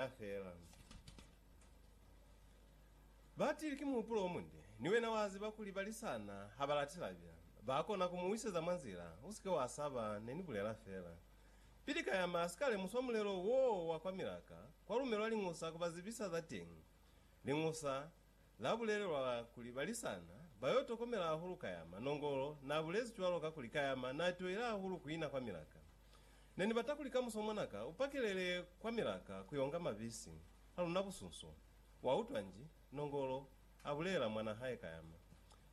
Na fela. Batili ki muhupulo omunde, ni wena waziba kuli balisana habalati labya. Bakona kumuwiseza mwa nzila, usike wasaba, nenibulela fela. Pili Kayama asika lemuswa mulelo woo wa kwa Milaka, kwalumelwa Liñusa kubazibisa za teñi. Liñusa Na bulelelwa kuli balisana ba yo tokomela hahulu Kayama. Nongolo na bulezi cwalo kakuli Kayama na toile hahulu ku ina kwa milaka. Ne ni bata kuli kamuso mwanaka u pakelele kwa milaka ku yo nga mabisi a luna busunso. Wa utwa nji? Nongolo a bulelela mwana hae Kayama.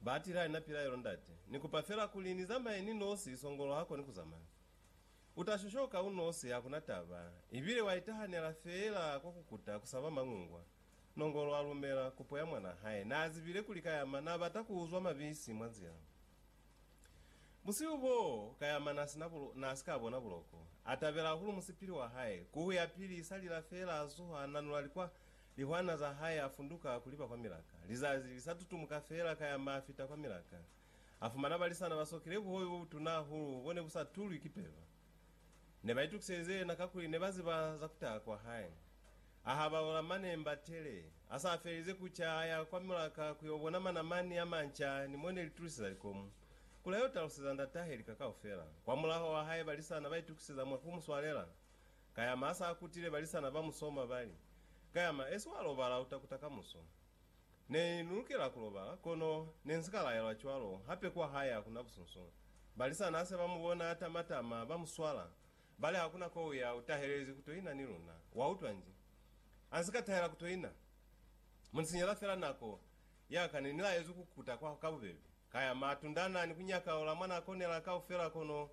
Ba atile ha ni na pilaelo, Ndate, ni kupa fela kuli ni zamaye ni nosi, Songolo ha koni ku zamaya. U ta shoshoka u nosi, hakuna taba. Ibile wa itahanela fela kwa ku kuta, ku saba mangungwa. Nongolo a lumela kopo ya mwanaa hae. Naa zibile kuli Kayama naa bata ku uzwa mabisi mwa nzila. Busihu boo, Kayama naa si na bulo, naa si ka bona buloko. A tabela hahulu musipili wa hae. Kuhu ya pili i sa lila feela a zuha, a nanula likwa, lihwana za hae, a funduka ku liba kwa milaka. Lizazi li sa tutumuka feela, Kayama a fita kwa milaka. A fumana balisana ba sokile buhobi bo butuna hahulu bo ne bu sa tulwi ki peba. Ne ba itukiselize yena kakuli ne ba ziba za ku taha kwa hae. A habaula mane Mbatele. A sa felize ku ca, a ya kwa mulaka ku yo bona manamani a manca ni mo ne li tuliseza likomu, kuli a yo taluseza ndatahe lika kaufela. Kwamulaho wa haiba lisana ba itukiseza mwa ku mu swalela, Kayama a sa kutile, balisana ba mu soma, ba li, Kayama, esi wa lobala, u ta kuta kamuso. Ne ni lukela ku lobala, kono ne nsi ka laelwa cwalo. Hape kwa hae hakuna busunsu. Balisani hase ba mu bona a tama-tama, ba mu swala. Ba li, Hakuna ko u ya, u tahelezi ku to ina ni luna. Wa utwa nji? A nsi ka tahela ku to ina. Mu ni sinyela fela nako ya ka. Ne ni laezwi ku kuta kwa ka bubebe. Ka ya ma tundana ni ku nyaka ola mwa na konela kaufela, kono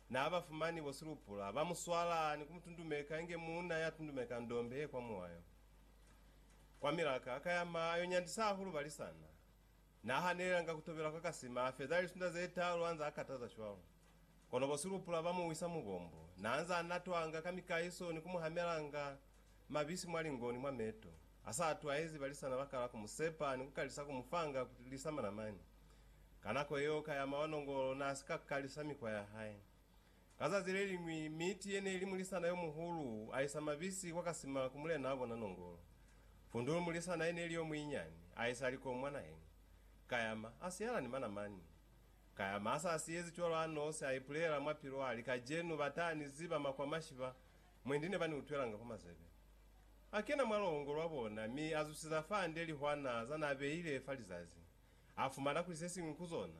na ba fumani bo silupula. Ba mu swala ni ku mu tundumeka inge muuna ya tundumeka ndombe ye kwa muwayo. Kwa milaka, ka yama yo nyandisa hahulu balisana. Na hanelelanga ku tobela kwa kasima, a feza lisunda ze talu anza a kataza cwalo. Kono bo silupula ba mu wisa mu bombo. Na anza a natwanga ka mikaiso ni ku mu hamelanga mabisi mwa lingo ni mwa meto. Ha sa atwaezi, balisana ba kala ku mu sepa ni ku kalisa ku mu fanga ku lisa manamani. Ka nako yeo, ka yama wa nongolo na si ka kalisa mikwa ya hae. Ka zazi leliñwi, miti ye ne li mulisana yo muhulu a isa mabisi kwa kasima ku mulenaa bona Nongolo. Pundulu mulisana ye ne li yo muinyani a isa likoo mwa naheñi. Kayama, a siyala ni manamani. Kayama a sa siyezi cwalo a nosi, a ipulela mwa pilu a li, Kajenu ba ta ni ziba makwamashi ba, mwendi ne ba ni utwelanga kwa mazebe. A kena mwa luhongo lwa bona, mi a zusiza fande lihwana za n'a beile fa lizazi. A fumana kuli se siñwi ku zona,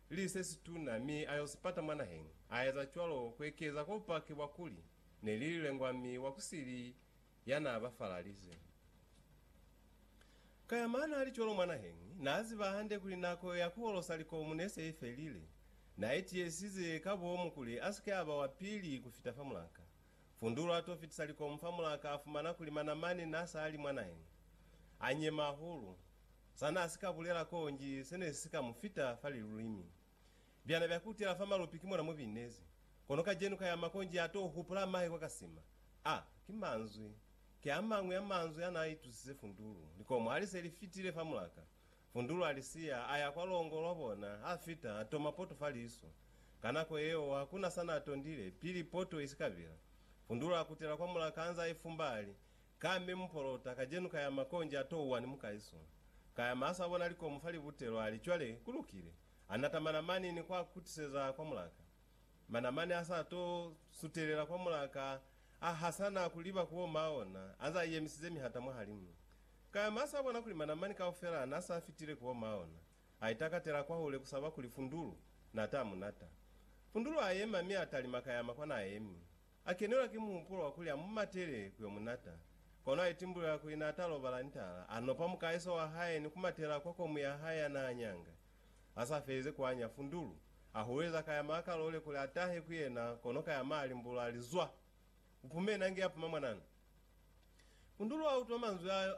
li se situna mi a yo si pata mwa naheng. A eza cwalo ku ekeza kwa bupaki bwa kuli ne li lilengwa mi wa ku si li ya n'a ba falalize. Ka ya mana a li cwalo mwa naheng, n'a ziba hande kuli nako ya ku holosa likomu ne se i felile. N'a itiisize ka bomu kuli a si ke a ba wa pili ku fita fa mulaka. Fundulu a t'o fitisa likomu fa mulaka a fumana kuli manamani n'a sa li mwa naheng a nyema hahulu. Sa n'a si ka bulela k'o nji se ne si ka mu fita fa lilulimi. Byana bya kutela fa malupi ki mona mo binezi. Kono kacenu ka ya mako nji a t'o hupula mahe kwa kasima. A ki manzwi. Ki a mañwi a manzwi a n'a itusise Fundulu. Likomo ha li se li fitile fa mulaka, Fundulu a li siya, a ya kwa longo lwa bona, a fita, a toma poto fa liso. Ka nako yeo, ha ku na sa n'a tondile, pili poto i si ka bila. Fundulu a kutela kwa mulaka anze a ifumba, a li, Ka mi mupolota kajenu ka yama konji ato uwani mukaiso. Ka yama asa bona likomu fa libutelo ali, Cwale, ku lukile. A nata manamani ni kwa kutiseza kwa mulaka. Manamani asa to sutelela kwa mulaka, a hasana ku liba ku oma ona, anza ayemisize mihata mwahalimu. Ka yama asa bona kuli manamani kaufela na sa fitile ku oma ona. A itakatela kwahule kusaba kuli fundulu nata munata. Fundulu ayema mi atalima ka yama kwa na yemi. A kenelwa ki muhupulo wa kuli a mu matele ku yo mu nata. Kono a itimbulela kuli n'a ta lobala ni tala, a nopa mukaheso wa hae ni ku matela kwa komu ya hae ya n'a nyanga. A sa felize ku anya fundulu, a hulweza ka ya maa ka lole kuli a tahe ku yena kono ka ya maa a limbulula a li, Zwa! U pume nange ya puma mwananu! Fundulu a utwa manzwi ao.